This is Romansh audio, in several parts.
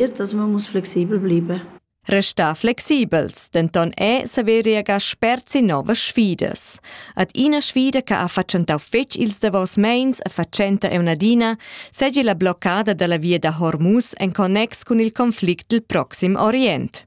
ertas mummus flexibel bliber. Restar flexibels, denton è saveria spert si novas sfidas. Ad ina sfida che ha fatschentau fetg ils davos meins e fatschenta è un'adina, segi la bloccada dalla via da Hormuz en connex cun il conflict dil proxim Orient.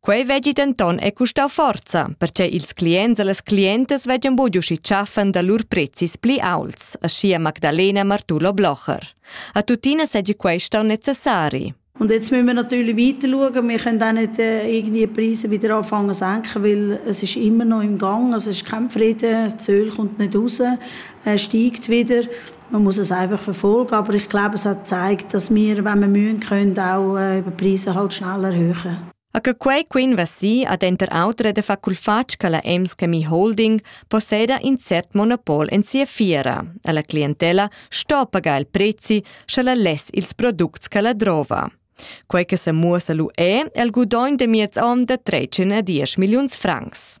Quei veggi denton è custau forza, perche ils clients e las clientas veggan buc uschi tschaffen da lur prezis pli aults, aschia Magdalena Martulo Blocher. A tuttina seggi quei stau necessari. Und jetzt müssen wir natürlich weiterschauen. Wir können auch nicht äh, irgendwie die Preise wieder anfangen zu senken, weil es ist immer noch im Gang. Also es ist kein Frieden, Zöl kommt nicht raus, er steigt wieder. man muss es einfach verfolgen, aber ich glaube, es hat gezeigt, dass wir, wenn wir mühen können, auch äh, über die Preise halt schnell erhöhen. A che quei quinva si ad enter autre de faculfatg che la Emschemi Holding posseda in cert monopol en sia fiera. Alla clientela sto pagar il prezzi sche la less ils products che la drova. Quei che se muossa lu è il gudogn de miez onn de 13 a 10 milliuns francs.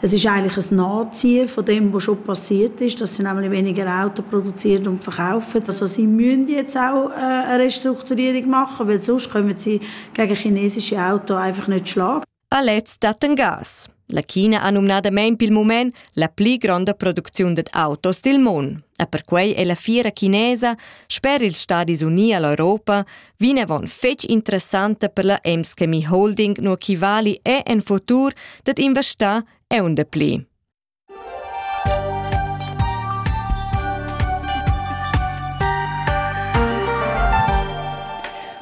Es ist eigentlich ein Nachziehen von dem, was schon passiert ist, dass sie nämlich weniger Autos produzieren und verkaufen. Also sie müssen jetzt auch äh, eine Restrukturierung machen, weil sonst kommen sie gegen chinesische Autos einfach nicht schlagen. Palets datten Gas. La China ha numnadamain pel mument la pli gronda producziun dad autos dil mund. E perquei è la fiera chinesa, sper ils Stadis Unii all'Europa, Vinavon fetg interessanta per la Emskemi Holding no chi vali è en futur dat investar eun de pli.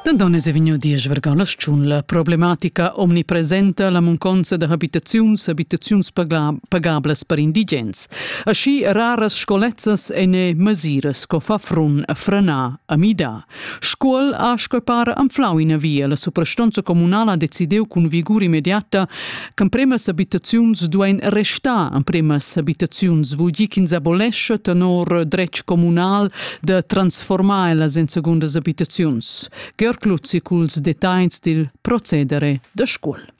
Dendones è vegnu diesch vergalas tschun la problematica omnipresenta la munconza da habitaziuns habitaziuns pagablas per indigens. Aschi raras scolezzas e ne masiras co fa frun a frenar a mida. Scuol ha scappar anflau ina via. La suprastonza communala ha decidiu cun vigur immediata ch'empremas abitaziuns duein restar. Empremas abitaziuns vul dir ch'ins abolescha tenor dretg communal da transformar ellas en segundas abitaziuns. Georg Luzzi culs detagls dil procedere da Scuol.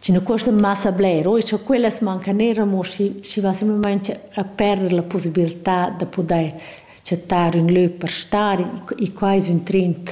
Sino cuosta massa bler, oi cha quellas mancan eir amo schi schi va simplamaing a perder la pussibiltà da pudair chattar ün lö per star, i qua es ün trend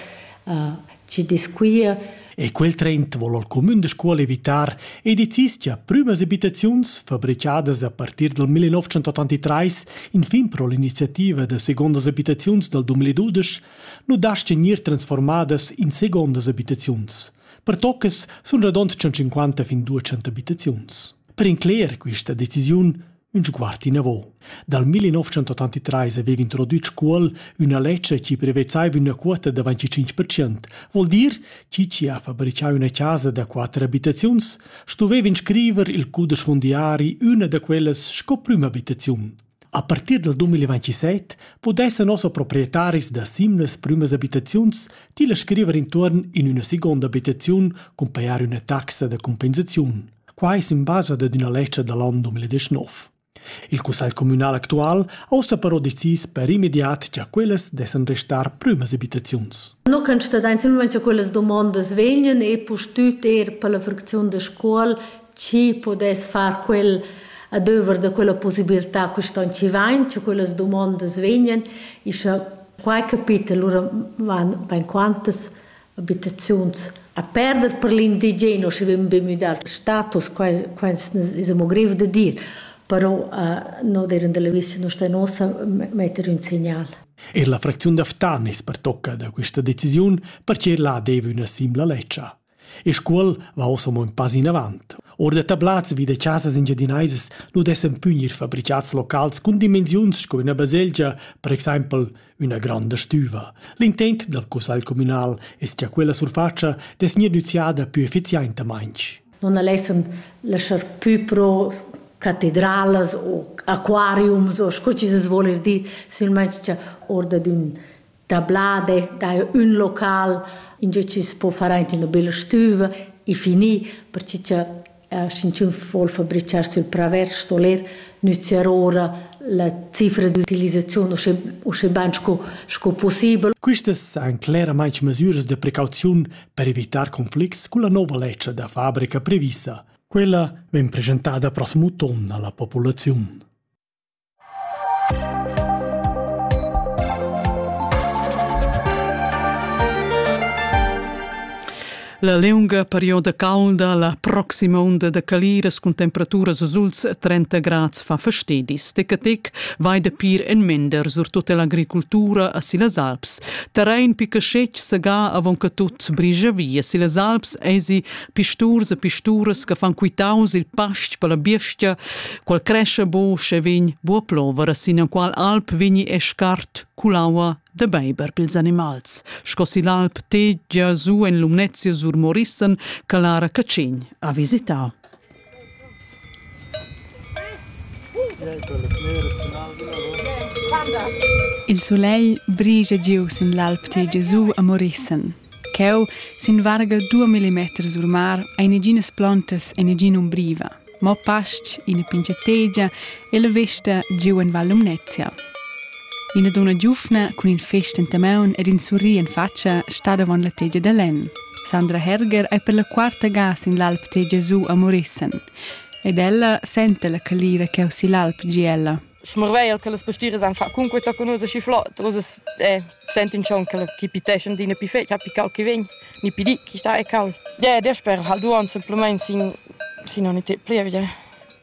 chi desquia. E quel trend vol il cumün da Scuol evitar e decis cha prümas abitaziuns, fabrichadas a partir dal 1983 infin pro l'iniziativa da segondas abitaziuns dal 2012, nu daschan gnir transformadas in segondas abitaziuns. pertoccas sun radond 150 fin 200 abitaziuns. Per incleger questa decisiun un sguard inavo. Dal 1983 aveva introdüt Scuol üna ledscha chi prevezzaiva üna quota da 25%, vol dir chi chi ha fabricà üna casa da quatter abitaziuns stuveva inscriver il cudesch fondiari üna da quellas sco prüma abitaziun. A partir dal 2027 pudessan nossa proprietaris da simlas prümas abitaziuns tilla scriver intuorn in üna seguonda abitaziun cun pajar üna taxa da cumpensaziun. Quai es in basa dad üna ledscha da l'an 2019. Il cussagl communal actual ha ussa però decis per immediat cha quellas dessan restar prümas abitaziuns. No can stadains il moment cha quellas domondas vegnan e pustüt eir per la fracziun da Scuol chi podess far quel adöver da quella possibilità che ston ci vain, che quellas domondas vegnan, e scha quai capita, lura van bain quantas abitaziuns a perder per l'indigeno, schi vegn be müdà il status, quai es amo grev da dir, però no dir da l'avis no sta nossa metter ün segnal. Er la fracziun da Ftan es pertocca da questa decisiun, perche là deva üna simpla ledscha. E Scuol va ussa mo in pass inavant. Ord da tablats vi da chasas engiadinaisas nu dessan pü gnir fabrichats locals cun dimensiuns sco üna baselgia, per exaimpel üna granda stüva. L'intent dal cussagl communal es cha quella surfatscha dess gnir nüziada pü effizientamaing. Non alessan laschar pü pro catedralas o aquariums o sco chi se svoler dir, silmeins cha or dad ün da bla da dai ün local in ge chi po far aint üna bella stüva e finì perche cha sch'inchün vuol fabrichar sül praver sto ler nüzziar ora la cifra d'utilisaziun uschè uschè bain sco sco pussibel. Quistas san cleramaing mesüras da precauziun per evitar conflicts culla nouva ledscha da fabrica previssa. Quella vegn presentada prossimo ton alla populaziun. La liunga perioda caulda la proxima onda da caliras cun temperaturas azuls 30 grads fa fastedis. Tecatec vai da pir en mender surtut l'agricultura a silas Alps. Terrain picacetg sagà avon che tut brigia via silas Alps esi pisturs e pisturas che fan quitaus il pastg per la biestia Qual cresce bu sche vegn bu plover sin enqual alp vegni e scart culaua de beiber pils animals, sco si l'alp tegia su en Lumnezia sur Morissen che Lara Cacin ha visitau. Il solegl brigia giu sin l'alp tegia su a Morissen. Cheu, sin varga 2 mm sur mar, ein neginas plontas e negin umbriva. mo pastg, ina pingiategia e la vesta giu en Val Lumnezia. Ina dunna giuvna cun in fest enta maun ed in surri en fatscha stat avon la tegia da lenn. Sandra Herger ei per la quarta ga sin l'alp tegia giu a Morissen. Ed ella senta la caliva cheu sigl alp gie ella. schmarveir che las pastiras han fatg cunquei tochen ussa schi flot, ussa eh, sentin schon che chi piteschan d'ina pi fetg, ha pical che vegn, ni pi di, chi sta e cal. Yeah, dasper hal duon semplamain sin, sin ogni te plievgia.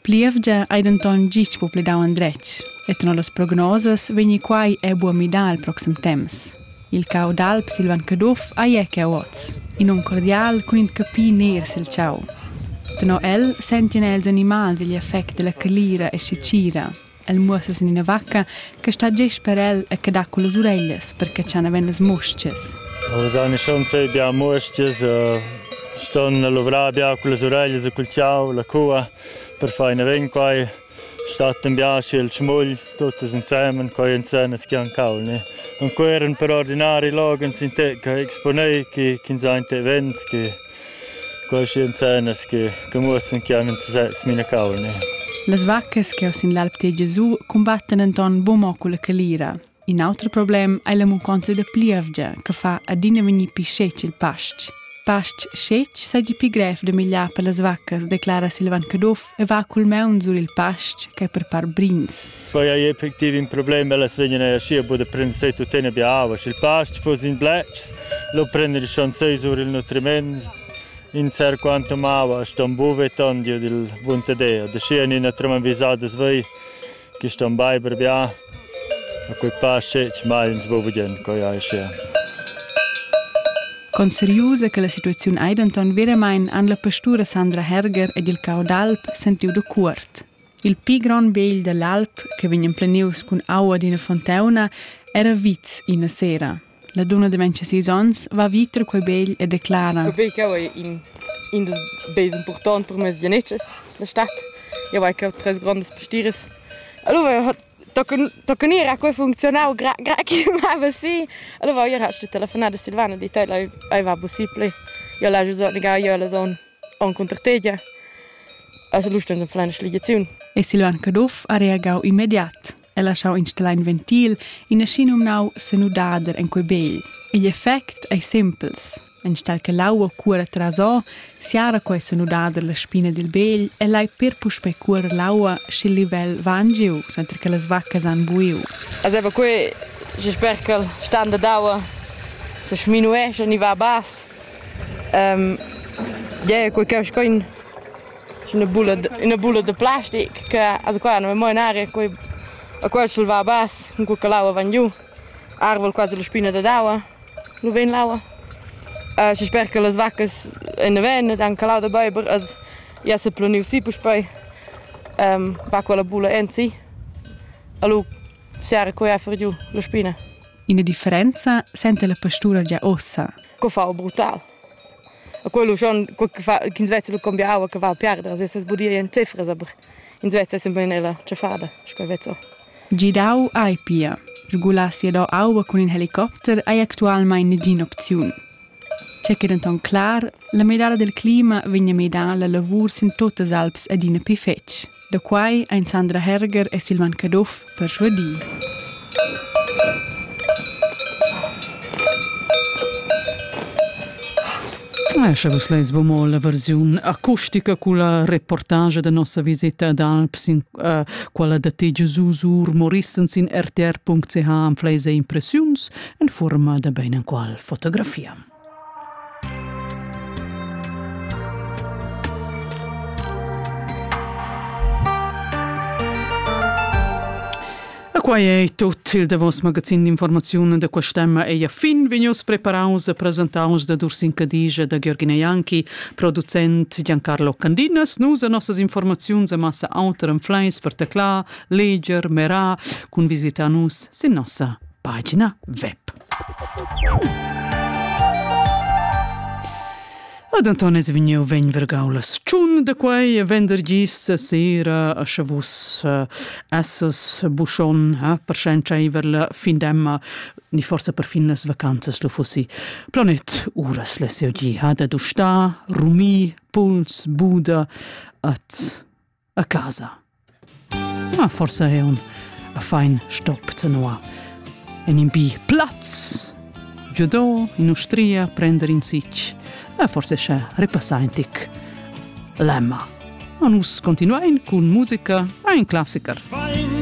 Plievgia ei denton gist po pledau endretg, et no las prognosas vegni quai e buo midar al proxim temps. Il cau d'alp Silvan Caduff ei era oz. In num cordial cun in capi ner sil tgau. Tenor el sentien els animals igl effect dalla calira e secira. El muossa sin ina vacca che sta gest per el e che dat con las ureglias per catschar naven las mustgas. Nus han schon sei bia mustgas, ston luvrar bia con las ureglias e col tgau, la cua, per far ina vin quai. Stat in biaschi el schmugl, tuttas insemen, quai en scenas chi han cau ne. Und quei eran per ordinari loghens in te che exponei chi chi ins ha in te event, chi questi en scenas chi chi muossan chi han in success minacau ne. Las vaccas che sin l'alp Tê Gesù cumbattan enton buca mo culla calira. In auter problem ei la munconza da plievgia che fa adina vegnir pli scetg il pastg. Pastg scetg seigi pli grev da migliar per las vaccas, declara Silvan Caduff e va cul maun sur il pastg ch'ei per part brins. Poi ei effectiv in problem, ellas vegnan eir schi a bod a prender se tuttina bia aua. Sch'il pastg fuss in bletschs, lo prender il chanzei sur il nutriment in ser quantum aua, ston buve ton giu dil buntadea. Da schi en ina trema visada svei Quist on baiver bia, a quei pass scetg mai ins bo vegien, coi ei sia. Conseriusa che la situaziun ei denton veramein han la pastura Sandra Herger ed il cau d'alp sentiu da cuort. Il pli grond begl dall'alp, che vegn emplenius cun aua d'ina fonteuna, era vits ina sera. La dunna de 26 onns va viter quei begl e declara: Quei cheu ei in, in dils beis impurtonti per mes genetschas, la stat. Jeu vai cheu tres grondas pastires. Allora toca gnir a quei funzionau gra, gra che mava si. Allora jeu ha stu telefonar a Silvana e dit ella ei va possibile. Jeu l'hai giu negau jeu la zon encunter tegia. Also lu stund en plena schligiaziun. E Silvan Caduff ha reagau immediat. e laschau installar in ventil, in aschinumnau senudader en quei begl. Igl effect ei simpels. Enstall che l'aua cuora trasò, siara quei senudader la spina dil begl e lai per puspei cuorer l'aua sch'il livel va angiu, senza che las vaccas han buiu. Azeva quei, je sper che il standard d'aua se sminuesce e ni va a bass. Um, yeah, quei che sco in ina bulla, ina bulla da plastic che also qua non mo in aria, quei a quel sch'el va bas, cun quella che l'aua van giu, arval quasi la spina dad aua, nu vegn l'aua. Uh, schi sper che las vaccas en ven ed han calau da beiber ed ja se planiu si puspei, um, va quella bulla ensi. Allo siara quei a fer giu la spina. Ina differenza sente la pastura gia ossa. Co fa brutal. A quel uschon ch'ins vezza lu cambiau aua che va a piarder, sesa sbudir en cefras, aber ins vezza sembein ella tschaffada, sco vezzo. Gidau ei pia. Regular siadau aua cun in helicopter ei actualmein negin'opziun. Tge che denton clar, la medala del clima vegna medala lavur sin tuttas alps adina pli fetg. Da quai ein Sandra Herger e Silvan Caduff perschuadì. Esce vus leis bomo la versiun acustica culla reportage da nossa visita d'Alps in uh, quella da te Jesus ur morissens in rtr.ch am fleise impressiuns en forma da bein en qual fotografia. quai è tut il davos magazin d'informaziun da quest'emma ei a fin vegnius preparaus e presentaus da Dursin Cadigia e da Georgina Janki, producent Giancarlo Candinas. Nus e nossas informaziuns a massa auter en fleis per teclar, leger, merar, cun visita nus sin nossa pagina web. Ad Anton es vegniu vegn vergau la tschun da quei vendergis sera a sche vus uh, esses buschon eh, per scentscheiver la fin d'emma ni forse per fin las vacanzas lu fussi planet uras la seu di ha da dustar rumi puls buda at a casa. Ma forsa è un a fein stop tenoa. En in bi plaz, giudò in ustria prender in sic, e forse sche repassaintic lemma. A nus continuain cun musica a in classiker. Fein